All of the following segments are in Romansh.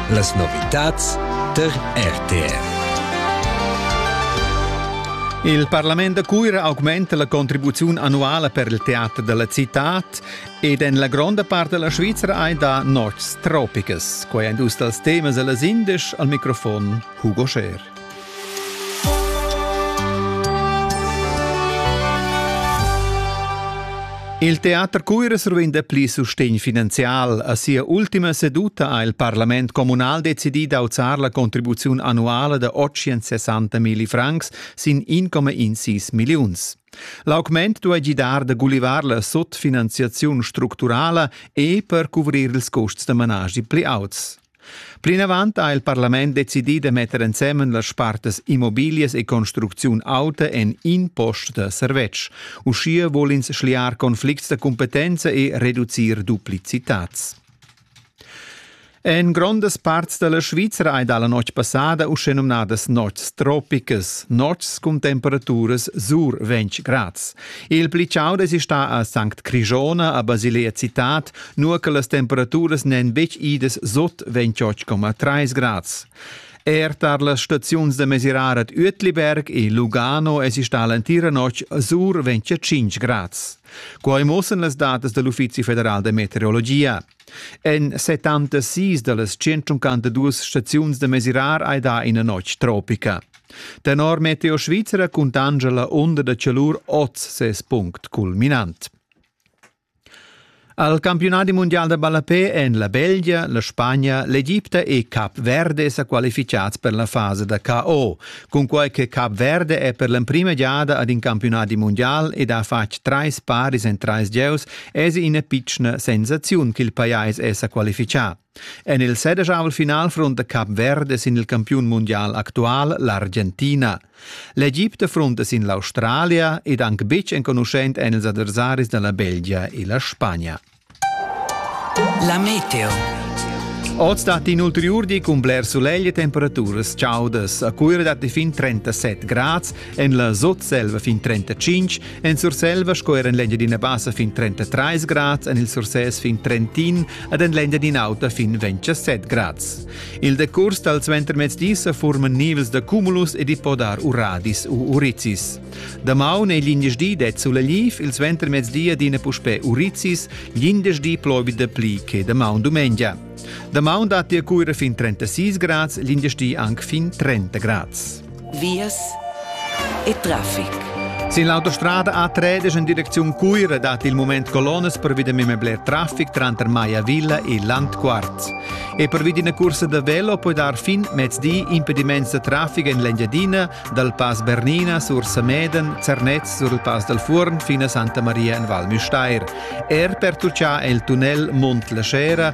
Las novitads tar RTR. Il Parlament da Cuira augmenta la contribuziun annuala per il teater della città ed en la gronda parte della Svizzera ein da Nordstropicas. Quei ein dus dals temas della Sindesch al microfon Hugo Scher. Il teater Cuires ruin dapli sustegn finanzial. A sia ultima seduta ha il parlament communal decidì d'auzar la contribuziun annuala da 860 milli francs sin 1,16 milliuns. L'augment duai gidar da gulivar la sotfinanziaziun structurala e per cuvrir ils custs da managi pli auts. Plinavant ha il parlament decidì da metter ensemen las spartas immobiglias e construcziun auta en in post da servetsch. Uschia vul ins schliar conflicts da competenza e reducir duplicitats. En grondas parts da la Svizra hai dà la notg passada uschenumnadas nots tropicas, nots cun temperaturas sur 20 grads. Il pli chauda è stà a Sankt Crigona, a Basilea Citad, Nua che las temperaturas n'èn betg idas sot, vegn tschotsch coma 3 grads. Er tar las staziuns da mesirar ad Uetliberg e Lugano èsi stà l'entira notg sur 25 grads. Quai muossan las datas da l'Uffizi federal da meteorologia. En 76 da las 152 staziuns da mesirar hai dà ina notg tropica. Tenor Meteo Svizzera cuntanscha la onda da chalur oz ses punct culminant. Al campiunadi mundial da ballapè èn la Belgia, la Spagna, l'Egipta e Cap Verde sa qualificads per la fasa da KO. Cunquai che Cap Verde è per l'emprima giada ad in campiunadi mundial ed ha fatg trais paris en trais gieus, èsi ina pitschna sensaziun ch'il pajais è sa qualifichà. En il sedeschavel final frunta Cap Verde sin il campiun mundial actual l'Argentina. L'Egipte frunta sin l'Australia ed anc betg enconuschent èn ils adversaris da la Belgia e la Spagna. La meteo. Oz datti in ulteriur di cun bler sulegl e temperaturas chaudas. A Cuira datti fin 37 grad, En la Sutselva fin 35, en Surselva sco er en l'Engia d'ina bassa fin 33 grads, en il Sursès fin Trentin ed en l'Engia d'in'auta fin 27 grads. Il decurs dal suentermezdi sa forman nivels da cumulus ed i po dar uradis u urizis. Damaun è l'indeschdi det sulla liv, il suentermezdi adina puspè urizis, l'indeschdi plovi da pli che damaun dumengia. Damaun datti a cuira fin 36 grads, l'indeschdi anche fin 30 grads. vias e traffic. Sin l'autostrada A3 in direcziun Cuira dat il moment colonas per via mime bler traffic tranter Maya Villa e Landquarz. E per via una cursa da velo puoi dar fin mezdi impediments da traffic en l'Engiadina, dal Pass Bernina sur Sameden, Zernez sur il Pass dal Fuorn fino a Santa Maria en Val Müstair. Er per Turcià è il tunnel Mont la Scera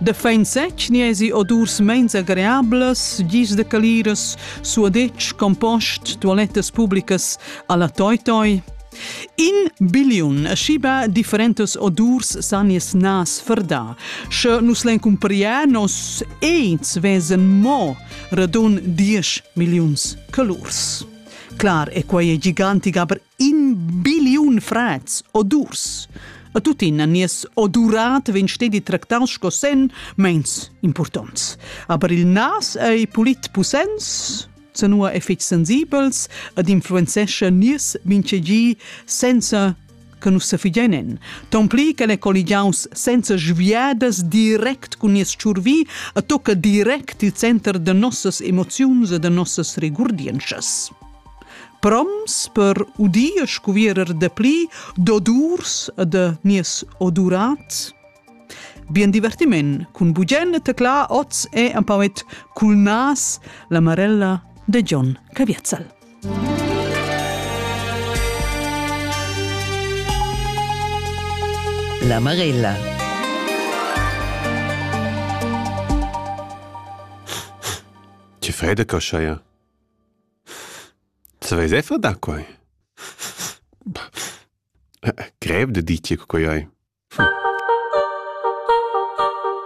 De fein sec niesi odurs meins agreables, gis de caliras, suadetsch, compost, toilettas publicas alla toi toi. In billion schiba differentes odurs san nies nas verda. Sche nus len cumpria nos eins vesen mo radun 10 millions calurs. Clar è quai gigantic, aber in biliun frats odurs. A tuttina nies odurat vegn stedi tractaus sco sen meins importants. Aber il nas ei pulit pussens, zanua e fetg sensibels ed influenzescha nies vincegi senza che nus sefigenen. Ton pli che el è colligiaus senza sviadas direct cun nies tschurvi e tocca direct il center de nossas emoziuns e de nossas regurdientschas. proms per udir scuvierer dapli d'odurs e de nies odurat? Bien divertiment cun bugen tecla oz e empauet cul nas la marella de John Caviazzal. La Marella Ti Frederker Scheier Sa veis effa da quai? Grev da dir che quai ei.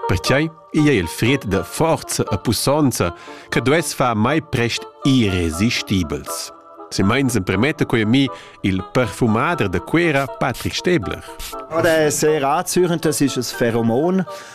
Pertgei ei ei il fried da forza e pussonza che duess far mai prest irresistibels. Se meins empremete quei mi il perfumader de Cuera Patrick Stebler. Ja, der sehr anzüchend, das ist ein Pheromon.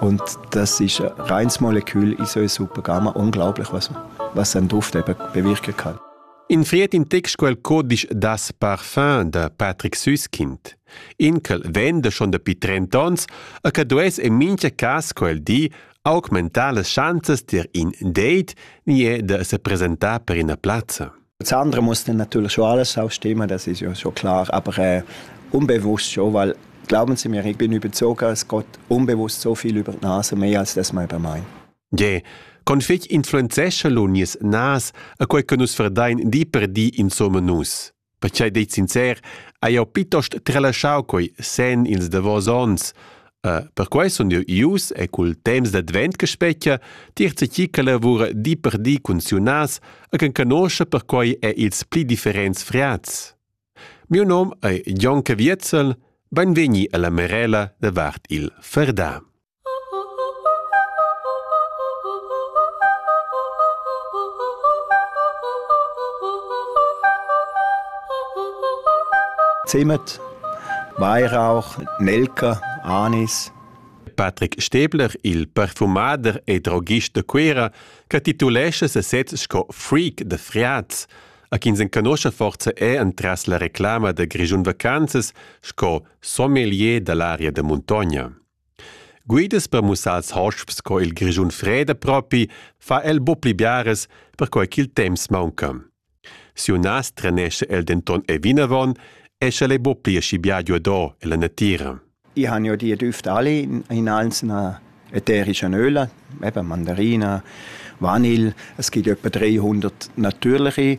Und das ist ein reines Molekül in so einer super Gamma. Unglaublich, was, was ein Duft eben bewirken kann. In fried in text quel codisch das parfum da Patrick Süskind. Inkel venda schon dapi 30 ons e che dues en mincha cas quel di augmentar las chanzas dir in date ni e da se presentar per ina plazza. Das andere muss dann natürlich schon alles ausstimmen, das ist ja schon klar, aber äh, unbewusst schon, weil glauben Sie mir, ich bin überzeugt, es geht unbewusst so viel über die Nase, mehr als das man über meint. Yeah. Con fetg influenzescha lo nies nas a quei che nus verdein di per di insomma nus. Perciei dei sincer, hai jau pitost tralasciau quei sen ils davos ons, Perquai sun jeu ius e cul temps d'advent che spetga tier tgi che lavura di per di cun siunas e che conoscha perquai er ils pli differents friats. Miu nom ei Jon Caviezel, beinvegni alla Merela davart il Ferdà. Zemet Weihrauch, Nelker, Anis. Patrick Stäbler, il perfumader e droghist da Cuira, che titulescha ses set sco freak da friats. A chi s'enconuscha forza è entras la reclama da Grischun Vacanzas sco sommelier da l'aria da muntogna. Guidas per mussar als hosps co il Grischun freda propi, fa el buc pli biaras, perquei ch'il temps maunca. Siu nas trenescha el denton e vinavon e sch'el ei buc pli aschi bia giuador ella natira. Ich habe ja die Düfte alle in einzelner ätherischen Öle, eben Mandarina, Vanille. Es gibt etwa 300 natürliche.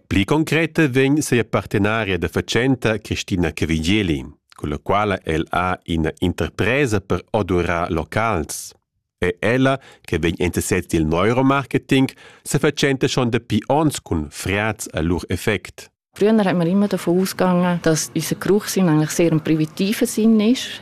Pli concreta vegn sia partenaria da fatschenta Christina Cavigeli, culla quala el ha ina interpresa per odurar locals. E ella, che vegn interessat dil neuromarketing, se fatschenta schon dapi ons cun friaz a lur effect. Früher hat man immer davon ausgegangen, dass unser Geruch eigentlich sehr im privativen Sinn ist.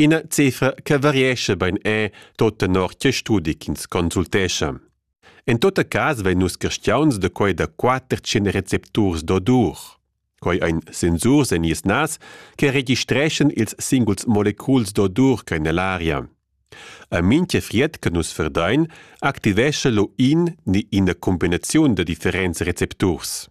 Ina cifra che variescha bein è tot tenor tge studi ch'ins consultescha. En tot cas vein nus carstiauns da quei da quater tschien recepturs d'odur. Quei ein sensurs en nies nas che registreschan ils singuls moleculs d'odur che nell aria. A mintga fried che nus verdein activescha lo in ni ina cumbinaziun da differents recepturs.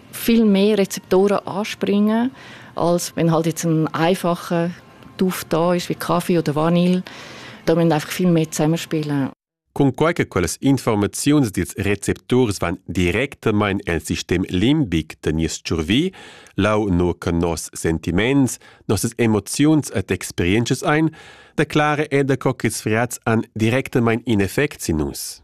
viel mehr Rezeptoren anspringen, als wenn halt jetzt ein einfacher Duft da ist wie Kaffee oder Vanille. Da müssen einfach viel mehr zusammenspielen. Cunquai che quellas informaziuns dils recepturs van directamain el sistem limbic da nies tschurvi, lau nur che nos sentiments, nossas emoziuns et experiences ein, declare eda co ch'ils friats han directamain in effect sin nus.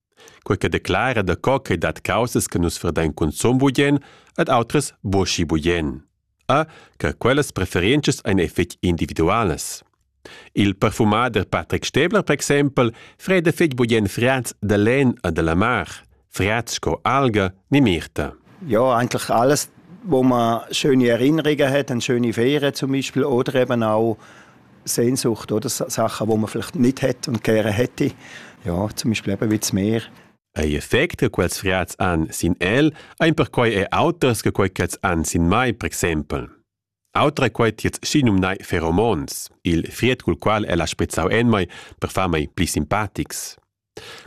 quei che declara daco ch'ei dat caussas che nus verdein consum bugen ad outras buca bugen. A che quellas preferenzas ein fetg individualas. Il perfumader Patrick Stäbler, per exempel, freda fetg bugen friats da len e della mar, friats sco alga ni mirta. Ja, eigentlich alles, wo man schöne Erinnerungen hat, eine schöne Ferien zum Beispiel, oder eben auch Sehnsucht, oder Sachen, die man vielleicht nicht hat und gerne hätte. Ja, zum Beispiel eben wie das Meer. Ei effect che quels frats han sin el, ein perquei e auters che quei ch'els han sin mai, per exempel. Autra quei tiets schinum nai pheromones, il fried cul qual ella sprizzau en mai per far mei pli simpatics.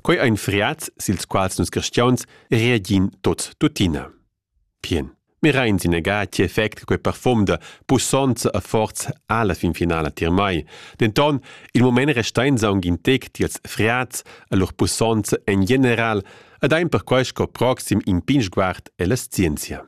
Quei ein friats sils quals nus cristiauns reagin tots tuttina. Pien. Mirain sinega ti effect quei parfum da pussonza e forza alla fin finala tier mai. Denton, il moment restein saung in tec tiels friats e lur pussonza en general ed ein perquei sco proxim in pin sguard ella scienzia.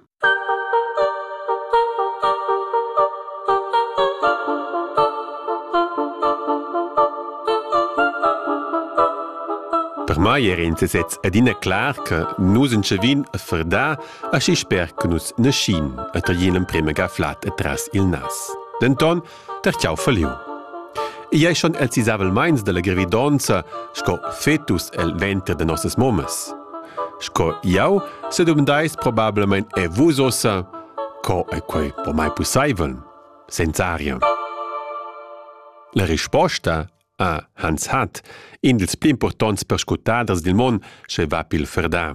Per mai era in sesez adina clar che nus entschavin a fardar aschi sper che nus naschin e taglin l'emprema ga flat atras il nas. Denton ter ch'jau feliu. Ei ei schon els isavelmeins dalla gravidonza sco fetus el venter de nossas mommas. Sco jau se dumandais probablemente e vus ossa, co è quei po mai possibel? Sensaria. La risposta a Hans Hat, in dels pli importants perscutaders dil mon, sche va pil Ferda.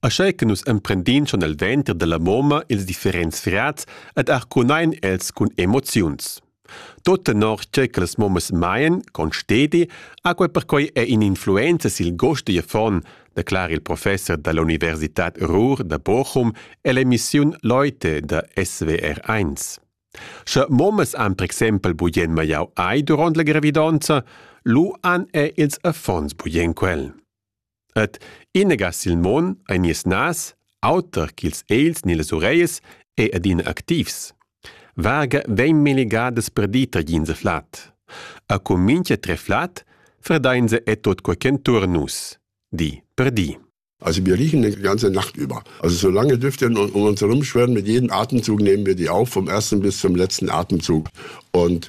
Aschei che nus emprendin schon el venter dalla moma ils differents frats ed arcunein els cun emoziuns. Tot tenor tgei che las momas maien, constedi, ha quei perquei è in influenza sil gost digl affon, declara il professor dall'Universitad Ruhr da Bochum ell'emissiun Leute da SWR1. Sche momas han per exempel bugen maiau ei duront la gravidonza, lu han er ils affons bugen quel. Ed inega sil mon ein nies nas, auter ch'ils egls ni las ureias, è adina activs. Varga vegn melegadas per dir tagins e flad. A cu mintga tre flad fredainse e tot quei ch'entuorn nus, di per di. Also wir riechen die ganze Nacht über. Also so lange dürfte wir um uns herumschwirren, mit jedem Atemzug nehmen wir die auf, vom ersten bis zum letzten Atemzug. Und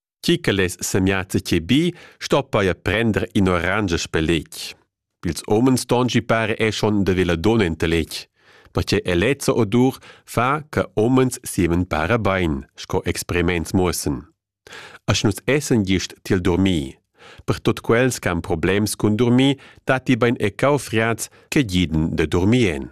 Chi che less semiazza che bi, sto paja prender in orange speletg. Ils homens dongi pare è schon de vela dona in teletg. Ma che elezza odur fa che homens siemen para bein, sco experiments muossen. Asch nus essen gist til dormir. Per tot quels che han problems cun dormir, datti bein e cau friaz che giden de dormien.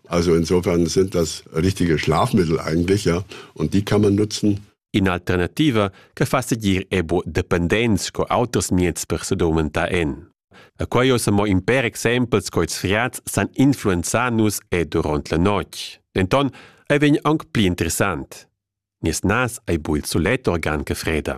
Also insofern sind das richtige Schlafmittel eigentlich, ja, und die kann man nutzen. In'alternativa che fa seguir ebo dependents co auters mieds per se domenta en. A quai ossa mo in per exempels co ils riats san influenzar nus e durant la notg. Denton ei vegn aunc pli interessant. Nies nas ei bul sulet organ che freda.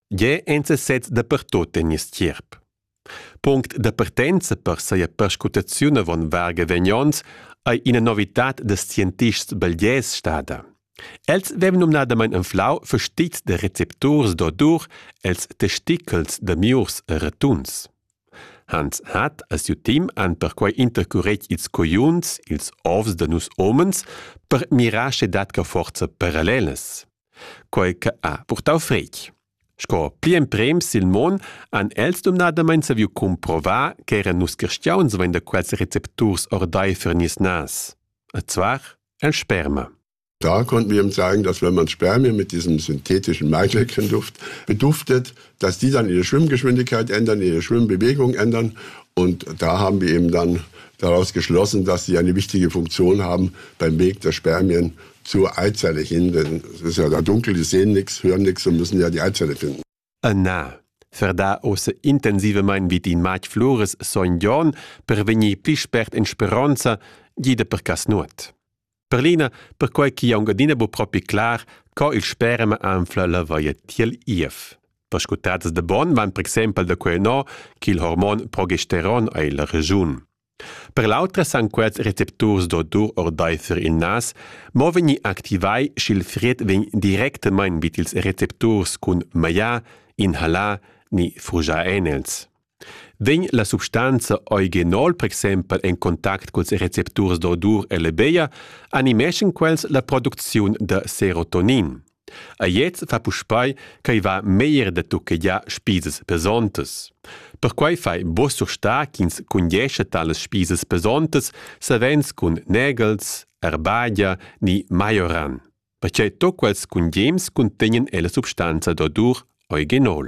Gie enza sez dapertut en nies tgierp. Punct da partenza per seia perscrutaziun avon varga vegnons ei ina novitad da scientists belgies stada. Els vevan numnadamain anflau fastits da recepturs d'odur els testicles da miurs e ratuns. Hans hat a siu team han perquei intercuret ils coiuns, ils ovs da nus omens per mirar sche dat ca forza parallelas. quei che ha purtau fretg. Sco pli emprems sil mon han els dumnadamain saviu cumprovar ch'eran nus cristiauns vein da quels recepturs ordeifer nies nas. E zwar el Sperma. Da konnten wir ihm sagen, dass wenn man Spermien mit diesem synthetischen Maischäckchenduft beduftet, dass die dann ihre Schwimmgeschwindigkeit ändern, ihre Schwimmbewegung ändern. Und da haben wir eben dann daraus geschlossen, dass sie eine wichtige Funktion haben beim Weg der Spermien zu Eizelle hin, denn es ist ja da dunkel, die sehen nichts, hören nichts und müssen ja die Eizelle finden. E na, verda osse intensive mein vit in matg flores sogn Jon per vegnir pli spert in speronza, gida per cas nuot. Per Lina, perquai chi aunc adina bu propi clar, co il sperema anfla la vaia tiel Ief. Vascutadas de bon van per exempel da quei no, ch'il hormon progesteron ei la regiun. Per l'autra san quels recepturs d'odur ordaifer il nas mo vegnir activai sch'il fried vegn directamain vid ils recepturs cun maglià, inhalà ni frugià enels. Vegn la substanza eugenol per exempel en contact culs recepturs d'odur e lebeia, animeschan quels la producziun da serotonin. A gliez fa puspei ch'ei va meglier da tucchegiar spisas pesontas. Perquei fai buca surstar ch'ins cundiescha talas spisas pesontas savens cun negels, erbagia ni maioran, pertgei tut quels cungems cuntegnan ella substanza d'odur origenol.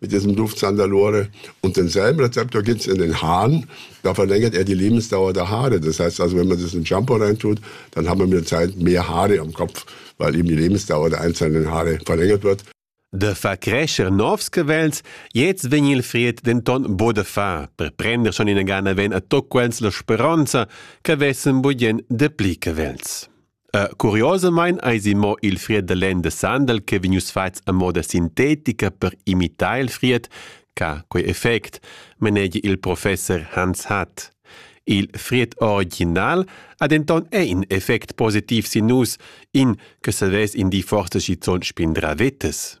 mit diesem Luftzahn da Lore. Und denselben Rezept gibt's in den Haaren. Da verlängert er die Lebensdauer der Haare. Das heißt also, wenn man das in Shampoo reintut, dann haben wir mit der Zeit mehr Haare am Kopf, weil eben die Lebensdauer der einzelnen Haare verlängert wird. De fa crescer novs cavels, jetzt vegn il fried denton bo de far, per prender schon in gana ven a toc quels la speronza, che vessen budien de pli cavels. Uh, curiosamain eisi mo il fried da lenn da sandal che vegnius fatgs a moda sintetica per imitar il fried ca quei effect manegia il professor Hans Hatt. Il fried original ha denton è in effect positiv sin nus, in che savess in di forse schizun spindra vetes.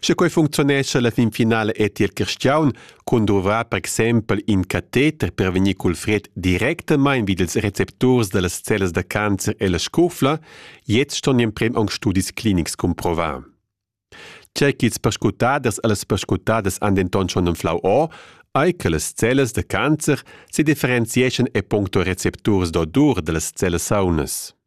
Sche quei funcziunescha la finfinala è tier Cristiaun cun duvrar per exempel in cateter per vegnir cul fred directamain vid ils recepturs dallas cellas da cancer e la scufla, jetzt ston in prem aunc studis clinics cumprovar. Tgei ch'ils perscrutaders e las perscrutaders han denton schon anflau o, ei che las cellas da cancer sedifferenzieschan e puncto recepturs d'odur dallas cellas saunas.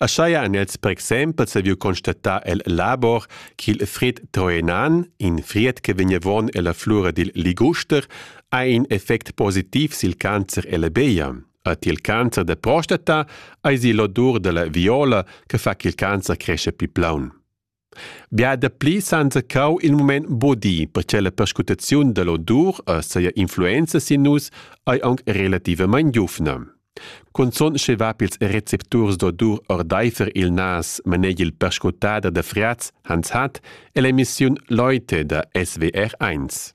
Aschia han els per exempel saviu constatar el labor ch'il fried troenan, in fried che vegnevon ella flura dil liguster, ha in effect positiv sil cancer e la beia. Er tiel cancer da prostata eisi l'odur dalla viola che fa ch'il cancer crescha pli plaun. Bia dapli s'hanza cau il mument bodi, perche la perscrutaziun dall'odur e seia influenza sin nus ei aunc relativamein giuvna. Cunzun sche va pils recepturs d'odur ordeifer il nas maneg il perscrutader da Friaz Hans Hatt ell'emissiun Leute da SWR1.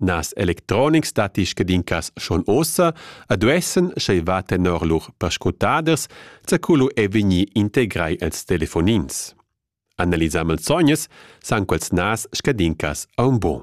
Nas electronics datti scadincas schon ossa e duessan, sch'ei va tenor lur perscrutaders, zaculu è vegnì integrai els telefonins. Analisà malsognas san quels nas scadincas a un bon.